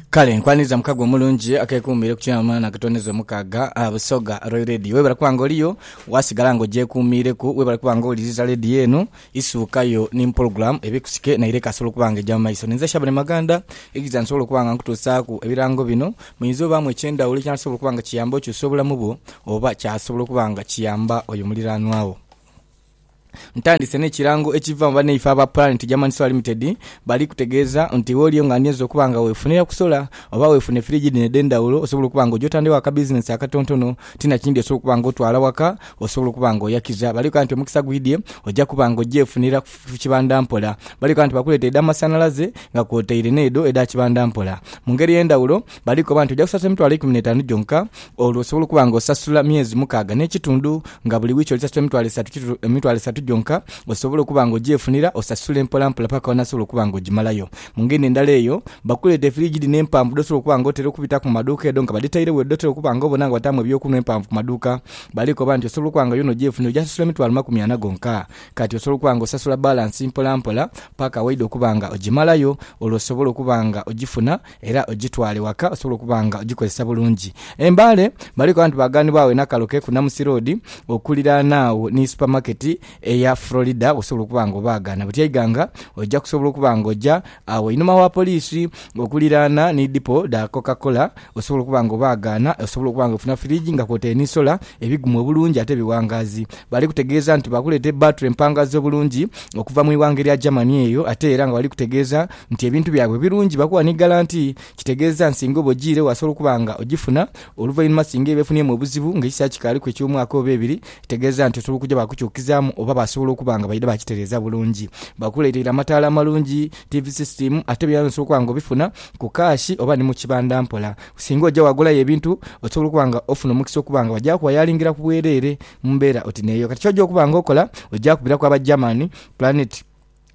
Kale nkwaniriza mukago omulungi akekuumire ku kyama na katoneza omukaaga ah, Busoga Royal Radio. Webale kuba nga oliyo, wasigala nga ogyekuumiireku, webale kuba nga owuliriza leediyo eno, isuukayo ni mu pulogulaamu eba ekusike naire ekaasobola okuba nga egya mu maiso. Ninze Shabani Maganda, eidhiza nsobole okuba nga nkutuusaaku ebirango bino, muinza obaamu eky'endhawulo ekinasobola okuba nga kiyamba okyusa obulamu bwo, oba kyasobola okuba nga kiyamba oyo muliraanwa wo. Ntandise n'ekirango ekiva mu banaife aba Planet German Solar Limited, bali kutegeeza nti wooliyo nga ndinze okuba nga weefunira ku sola oba weefune firiji dhino edh'endhawulo osobola okuba nga ogyotandikawo akabizinensi akatontono ti na kindi osobola okuba nga otwala waka osobola okuba nga oyakiza. Bali koba nti omukisa gwidhye oja kuba nga ogyefunira ku kibanda mpola. Bali koba nti bakuleetera edh'amasanhalaze nga kwotaire n'edho edha kibanda mpola. Mu ngeri ey'endhawulo, Balikoba nti oja kusasula emitwalo eikumi n'etaanu gyonka, olwo osobole okuba nga osasula myezi mukaaga n'ekitundu, nga buli wiiki oli sasula emitwalo esatu kitu, emitwalo esatu gyonka, osobole okuba nga ogyefunira, osasule mpolampola paka w'onaasobola okuba nga ogimalayo. Mu ngeri endala eyo, bakuleeta efiriji dhino empanvu dh'osobola okuba nga otera okubitaku mu maduuka edo nga badhitairegho eyo dh'otera okuba nga obona nga bataamu eby'okunhwa empanvu ku maduuka. Balikoba nti osobola okuba nga yoona ogyefunira, oja sasula emitwalo makumi ana gonka. Kati osobola okuba nga osasula balansi mpolampola paka waidha okuba nga ogimalayo, olwo osobole okuba nga ogifuna, Era ogitwale waka osobole okuba nga ogikozesa bulungi. E Mbale baliku abantu baaganibwagho e Nakaloke ku Namusi Road okuliraana agho ni supamaketi eya Florida osobola okuba nga obaagaana. Butya Iganga oja kusobola okuba nga oja agho einhuma wa poliisi okuliraana ni dipo dha Coca-Cola osobola okuba nga obaagaana. Osobola okuba nga ofuna firiji nga kwotaire ni sola ebigumu obulungi ate ebiwangaazi. Bali kutegeeza nti baakuleeta ebbaature empangaze obulungi okuva mu ighanga erya Germany eyo ate era nga bali kutegeeza nti ebintu byabwe birungi bakuwa ni galanti, kitegeeza nsinga oba ojiire wasobola okuba nga ogifuna oluvainhuma singa eba efuniemu obuzibu nga ekiseera kikaaliku eky'omwaka oba ebiri tegeeza nti osobola okuja baakukyukizaamu oba basobola okuba nga baidha baakitereeza bulungi bakuleeteire amataala amalungi, tiivi sisitiimu ate byona osobola okuba nga obifuna ku kaashi oba ni mu kibanda mpola. Singa oja waagulayo ebintu osobola okuba nga ofuna omukisa okuba nga bagya kuwayalingiraku bwereere mu mbeera oti n'eyo. Kati ky'oja okuba nga okola oja kubiraku aba German, Planet,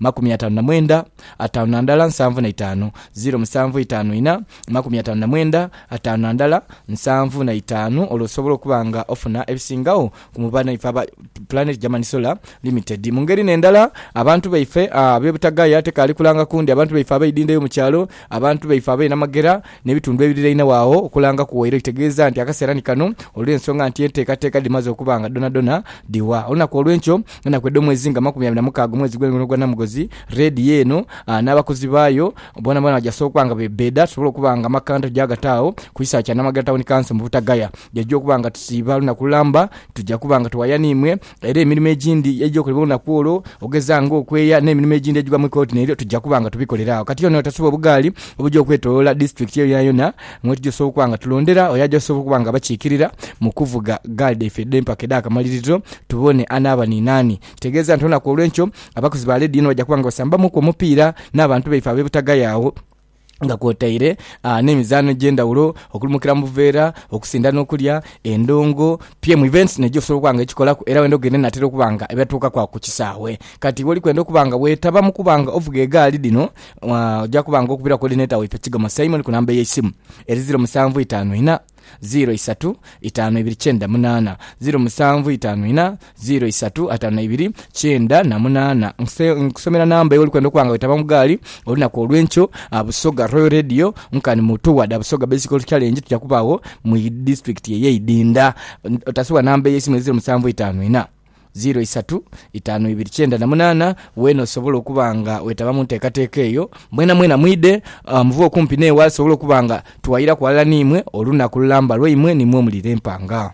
makumi ataanu na mwenda, ataanu na ndala, nsanvu na itaanu, ziro musanvu itaanu ina, makumi ataanu na mwenda, ataanu na ndala, nsanvu na itaanu, olwo osobola okuba nga ofuna ebisingagho ku mu banhaife aba Planet Germany Solar Limited. Mu ngeri n'endala, abantu baife ab'e butagaya tekaali kulanga kundi, abantu baife abaidha endha yo mu kyalo, abantu baife abainamagera, n'ebitundu ebirirainhagho agho okulanga ku waire kitegeeza nti akaseera ni kano olw'ensonga nti enteekateeka dhimaze okuba nga dhoonadhoona dhiwa. Olunaku olw'enkyo, enaku edh'omwezi nga makumi abiri na mukaaga omwezi gw'endhogono gwa Namugozi, Radio eno n'abakozi baayo boonaboona baja sookwa nga beebbeeda tusobole okuba nga amakanda tujaagata agho ku kisaawe kya Namagala Town Council mu Butagaya. Jaja okuba nga tusiiba lunaku lulamba, tuja kuba nga tuwaya n'imwe Era emirimo egindi eja okolebwa olunaku olwo, okugeza nga okweeya n'emirimo egindi egigwa mu kooti nayo tuja kuba nga tubikolera agho. Kati ono tasubwa obugaali obuja okwetoloola disitulikiti eyo yonayona mwetuja osobola okuba nga tulondera oyo aja osobola okuba nga abakiikirira mu kuvuga gaali dhaife edh'empaka edh'akamaliriro tubone anaaba ni naani. Kitegeeza nti olunaku olw'enkyo abakuzi ba leediyo eno baja kuba nga basambamuuku omupiira n'abantu baife ab'e Butagaya agho. nga kwotaire n'emizaano egy'endhaghulo okuli mukira mu buveera, okusinda n'okulya, endongo, pm events n'ejo osobola okuba nga ekikolaku era wenda ogenda enaatera okuba nga ebatuukaku agho ku kisaawe. Kati iwe oli kwenda okuba nga weetaba mu kuba nga ovuga egaali dhino, oja kuba nga okubiraku koodineta waife Kigomo Simon ku namba y'eisimu eri ziro musanvu itaanu ina, ziro isatu itaanu ibiri kyenda munaana ziro musanvu itaanu ina ziro isatu ataanu na ibiri kyenda na munaana. Nse nkusomera namba eyo olikwenda okuba nga wetaba mu gaali olunaku olwenkyo. A Busoga Royal Radio nkani mutu wade a Busoga Bicycle Challenge tuja kuba agho mu disitulikiti eye Idinda. Otasobola namba ey'eisimu eziro musanvu itaanu ina. ziro isatu itaanu ibiri kyenda na munaana, weena osobola okuba nga weetaba mu nteekateeka eyo. Mwenamwena mwidhe, muve okumpi n'eghali tusobola okuba nga tuwayiraku ghalala n'imwe olunaku lulamba lwaimwe ni mwe omuli l'empanga.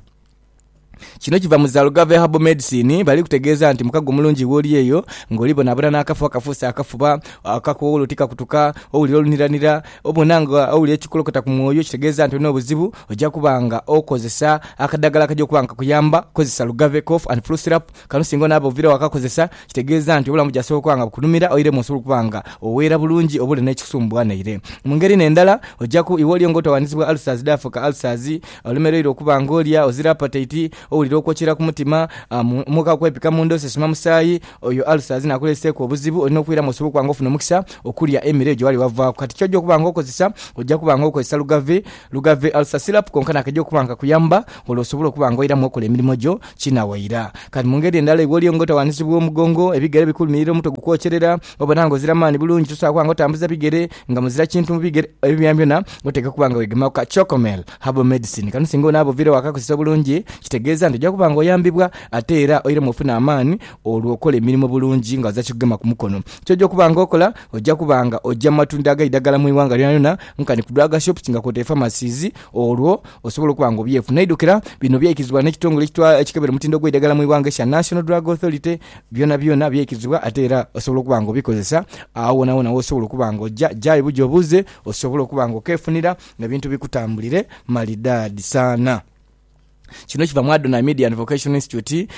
Kino kiva mu Zalgava Herbal Medicine, bali kutegeeza nti mukago mulungi wooli eyo ng'oli bonabona n'akafu akafuuse akafuba, akakoowolo tikakutuka, owulira oluniranira, Obona nga owulira ekikulokota ku mwoyo kitegeeza nti olina obuzibu. Oja kuba nga okozesa akadagala akaja okuba nga kakuyamba. Kozesa Lugave Cough and Flu Syrup. Kano singa onaaba oviire wakakozesa, kitegeeza nti obulamu bujasobola okuba nga bukunhumira oiremu osobola okuba nga oweera bulungi oba oli n'ekikusumbuwa naire. Mu ngeri n'endala, oja ku iwe oli nga otawaanizibwa ulcers dhaafuuka ulcers. Olemereirwe okuba nga olya, ozira apateiti. Owulira okwokyera ku mutima, omwoka okwepika munda osesema musaayi, oyo ulcers n'akuleeseeku obuzibu, olina okwiramu osobola okuba nga ofuna omukisa okulya emere gye wali wavaaku. Kati ky'oja okuba nga okozesa, oja kuba nga okozesa Lugave, Lugave Ulcer Syrup, konka naakaja okuba nga kakuyamba olwo osobole okuba nga oiramu okola emirimo gyo kinawaira. Kati mu ngeri endala iwe oliyo nga otawaanizibwa omugongo, ebigere bikulumirira, omutwe gukwokyerera, obona nga ozira maani bulungi, tosobola kuba nga otambuza bigere, nga muzira kintu mu bigere, ebyo byonabyona oteekwa okuba nga weegemaku ka Chocomel. Herbal medicine kano singa onaaba oviire waka kozesa bulungi kitegeeza nti oja kuba nga oyambibwa ate era oiremu ofuna amaani olwo okola emirimo bulungi nga oza kikugema ku mukono. Ky'oja okuba nga okola, oja kuba nga oja mu matundiro ag'eidagala mu ighanga lyonalyona nkani ku drug shops nga kwotaire pharmacies olwo osobole okuba nga obyefuna. Aidhukira bino byaikizibwa n'ekitongole ekikebera omutindo gw'eidagala mu ighanga ekya National Drug Authority, byonabyona byaikizibwa ate era osobola okuba nga obikozesa agho wonawona w'osobola okuba nga oja. Jayo buja obuuze osobole okuba nga okefunira. N'ebintu bikutambulire malidaadi sana. Kino kiva mu Adonai Media and Vocational Institute,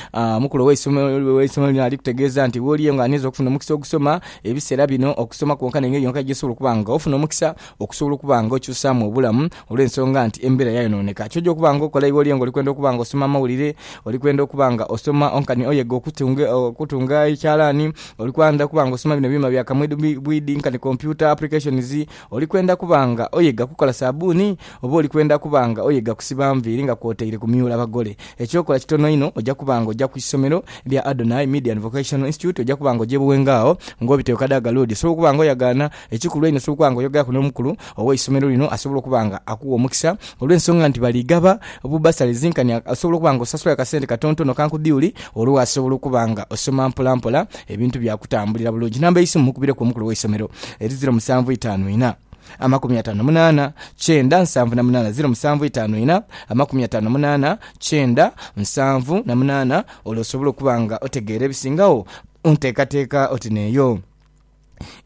mukulu ow'eisomero lino ali kutegeeza nti wooli yengo andiinza okufuna omukisa ogusoma ebiseera bino okusoma kwonka n'engeri yonka gy'osobola okuba nga ofuna omukisa okusobola okuba nga okyusaamu obulamu olw'ensonga nti embeera yayonooneka. Ky'oja okuba nga okola iwooli yengo oli kwenda okuba nga osoma amawulire, oli kwenda okuba nga osoma nkani oyega okutunga ekyalaani, oli kwenda okuba nga osoma bino ebyuuma bya kamwidhubwidhi nkani computer applications, Oli kwenda kuba nga oyega kukola sabuuni, oba oli kwenda kuba nga oyega kusiba nviiri nga kwotaire kumyula bagole? Eky'okola kitono inho, oja kuba nga oja ku isomero lya Adonai Media and Vocational Institute, oja kuba nga ogyebughenga agho ng'obita Okadaga Road. Osobola okuba nga oyagaana. Ekikulu einho osobola okuba nga oyogeaku n'omukulu ow'eisomero lino asobola okuba nga akuwa omukisa olw'ensonga nti bali gaba bu bursaries nkani osobola okuba nga osasula akasente katontono ka nkudhiuli olwo wasobola okuba nga osoma mpolampola Ebintu bya kutambulira bulungi. Namba y'eisimu mukubireku omukulu w'eisomero eri ziro musanvu itaanu ina, amakumi ataano na munaana, kyenda, nsanvu na munaana, ziro musanvu itaanu ina, amakumi ataano na munaana, kyenda, nsanvu na munaana, olwo osobole okuba nga otegeera ebisingagho ku nteekateeka oti n'eyo.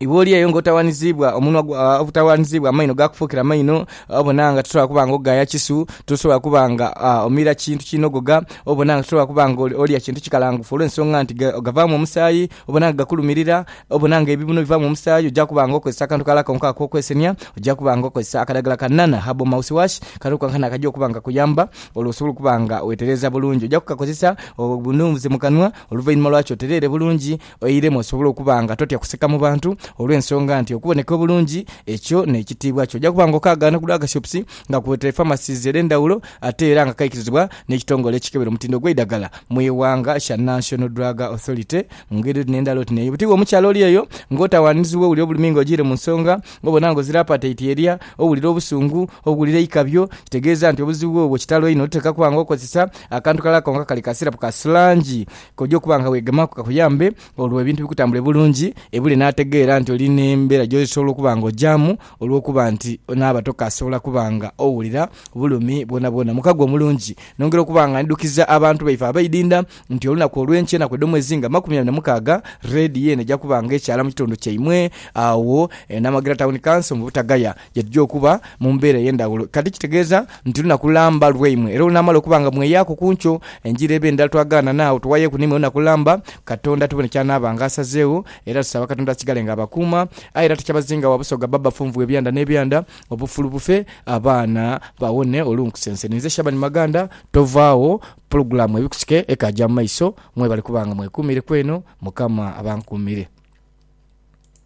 Iwe oli eyo ng'otawaaniziibwa, omunwa gwo obutawaaniziibwa, amaino gaakufuukira maino, obona nga tosobola kuba ng'ogaaya kisu, tosobola kuba nga omira kintu kinogoga, obona nga tosobola kuba ng'olya kintu kikalangufu olw'ensonga nti gavaamu omusaayi, obona nga gakulumirira, obona nga ebibuno bivaamu omusaayi, oja kuba ng'okozesa akantu kalala konka ak'okwesenia, oja kuba ng'okozesa akadagala ka Nana Herbal Mouth Wash, kano konkana akaja okuba nga kakuyamba olwo osobole okuba nga weetereeza bulungi. Oja kukakozesa obunuunhuze mu kanwa, oluvainhuma lwaki otereere bulungi Oiremu osobole okuba nga totya kuseka mu bantu olw'ensonga nti okuboneka obulungi ekyo n'ekitiibwa kyo. Oja kuba nga okaagaana okugula agashipusi nga kuweteere pharmacies edh'endhawulo ate era nga kaikirizibwa n'ekitongole ekikebera omutindo ogw'eidagala mu ighanga kya National Drug Authority mu ngeri oti n'endala oti n'eyo. Bwotyo iwe omukyala oli eyo ng'otawaanizibwa owulira obulumi nga ojiire mu nsonga, obona nga ozira apataiti erya, owulira obusungu, owulira eikabyo, kitegeeza nti obuzibu bwo bwa kitalo inho. Totekakuba nga okozesa akantu kalala konka kali ka sirapu ka silangi K'oja okuba nga weegemaaku kakuyambe olwo ebintu bikutambule bulungi ebule n'ategeera nti oli n'embeera gy'osobola okuba nga ogyamu olw'okuba nti onaaba tokaasobola kuba nga owulira bulumi bwonabwona. Mu kago omulungi, nongera okuba nga ndhidukiza abantu baife abaidinda nti olunaku olw'enkya ennaku edh'omwezi nga makumi abiri na mukaaga, Redio eno eja kuba nga ekyala mu kitundu kyaimwe agho e Namagira Town Council mu Butagaya. Ye tujja okuba mu mbeera ey'endhaghulo. Kati kitegeeza nti lunaku lamba lwaimwe. Era olunaamala okuba nga mweyaaku ku nkyo, engira eba endala twagaana n'agho tughayeeku naimwe lunaku lamba, Katonda tubone ky'anaaba nga asazeegho. Era tusaba Katonda asigale nga abakuuma. Aye era tukyabazinga wa Busoga bba Bafunvu ebyanda n'ebyanda, obufulu bufe, abaana bawone olunkusense. Ninze Shaban Maganda. Tovaagho, pulogulaamu Ebikusike ekaagya mu maiso. Mwebale kuba nga mwekuumireku eno. Mukama abankuumire.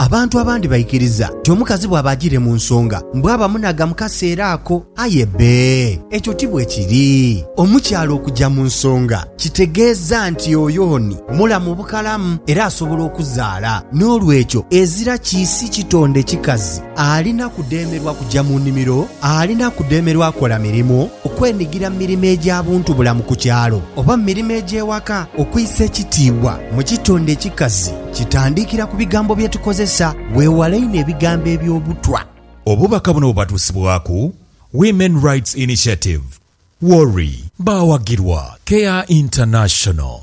Abantu abandi baikiriza nti omukazi bwaba ajiire mu nsonga mbu aba munhaga mu kaseera ako. Aye bbe, ekyo ti bwe kiri. Omukyala okuja mu nsonga kitegeeza nti oyo ni mulamu bukalamu era asobola okuzaala. N'olwekyo ezira kiisi kitonde kikazi alina kudhemerwa kuja mu nimiro, alina kudhemerwa kola mirimu, Okwenhigira mu mirimo egya buntubulamu ku kyalo oba mu mirimo egy'ewaka. Okwisa ekitiibwa mu kitonde ekikazi kitandiikira ku bigambo bye tukozesa. Weewale inho ebigambo eby'obutwa. Obubaka buno bubatuusibwaku Women Rights Initiative, WORI. Baawagirwa Care International.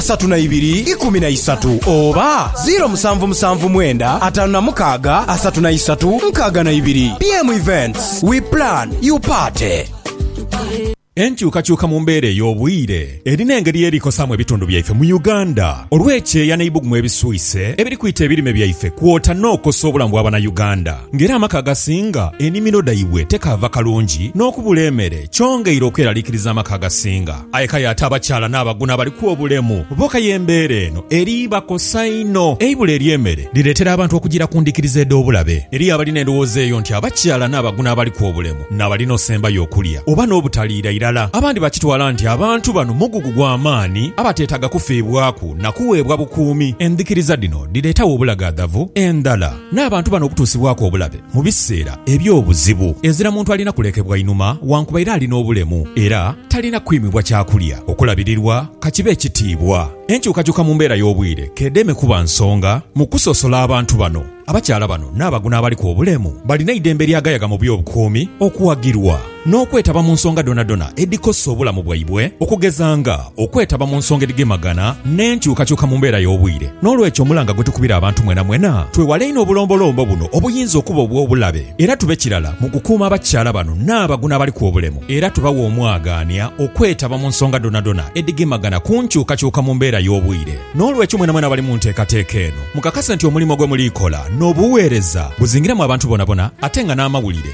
satu na ibiri ikumi na isatu oba ziro musanvu musanvu mwenda atanu na mukaaga asatu na isatu nkaaga na ibiri. BM Events, we plan, you party. Enkyukakyuka mu mbeera ey'obwire erina engeri y'erikosaamu ebitundu byaife mu Uganda olw'ekyeya n'eibugumu ebiswise ebiri kwita ebirime byaife kwota n'okosa obulamu bwa Banauganda nga era amaka agasinga enimiro dhaibwe tekaava kalungi n'okubula emere kyongeire okweralikiriza amaka agasinga Aye kale ate abakyala n'abaguno abaliku obulemu bo kaya embeera eno eri bakosa inho. Eibula ery'emere lireetera abantu okujiira ku ndhikiriza edh'obulabe. Eriyo abalina endhowooza eyo nti abakyala n'abaguno abaliku obulemu n'abalina osembayo okulya oba n'obutaliira irala. Abandi bakitwala nti abantu bano mugugu gwa maani abateetaaga kufiibwaku na kuweebwa bukuumi. Endhikiriza dhino dhireetagho obulagaadhavu endhala. N'abantu bano okutuusibwaku obulabe mu biseera eby'obuzibu, ezira muntu alina kulekebwa inhuma wankubaire ali n'obulemu era talina kwimibwa kyakulya, okulabirirwa ka kibe ekitiibwa. Enkyukakyuka mu mbeera y'obwire k'edeme kuba nsonga mu kusosola abantu bano. Abakyala bano n'abaguna abaliku obulemu balina eidembe eryagayaga mu by'obukuumi okuwagirwa. n'okwetaba mu nsonga dhonadhona edhikosa obulamu bwaibwe, okugeza nga okwetaba mu nsonga edhigemagana n'enkyukakyuka mu mbeera y'obwire. N'olwekyo omulanga gwe tukubira abantu mwenamwena, twewale inho obulombolombo buno obuyinza okuba obw'obulabe era tube kirala mu kukuuma abakyala bano n'abaguno abaliku obulemu era tubawe omwagaania okwetaba mu nsonga dhonadhona edhigemagana ku nkyukakyuka mu mbeera y'obwire. N'olwekyo mwenamwena abali mu nteekateeka eno mukakase nti omulimo gwe muliikola n'obuweereza buzingiramu abantu bonabona ate nga n'amawulire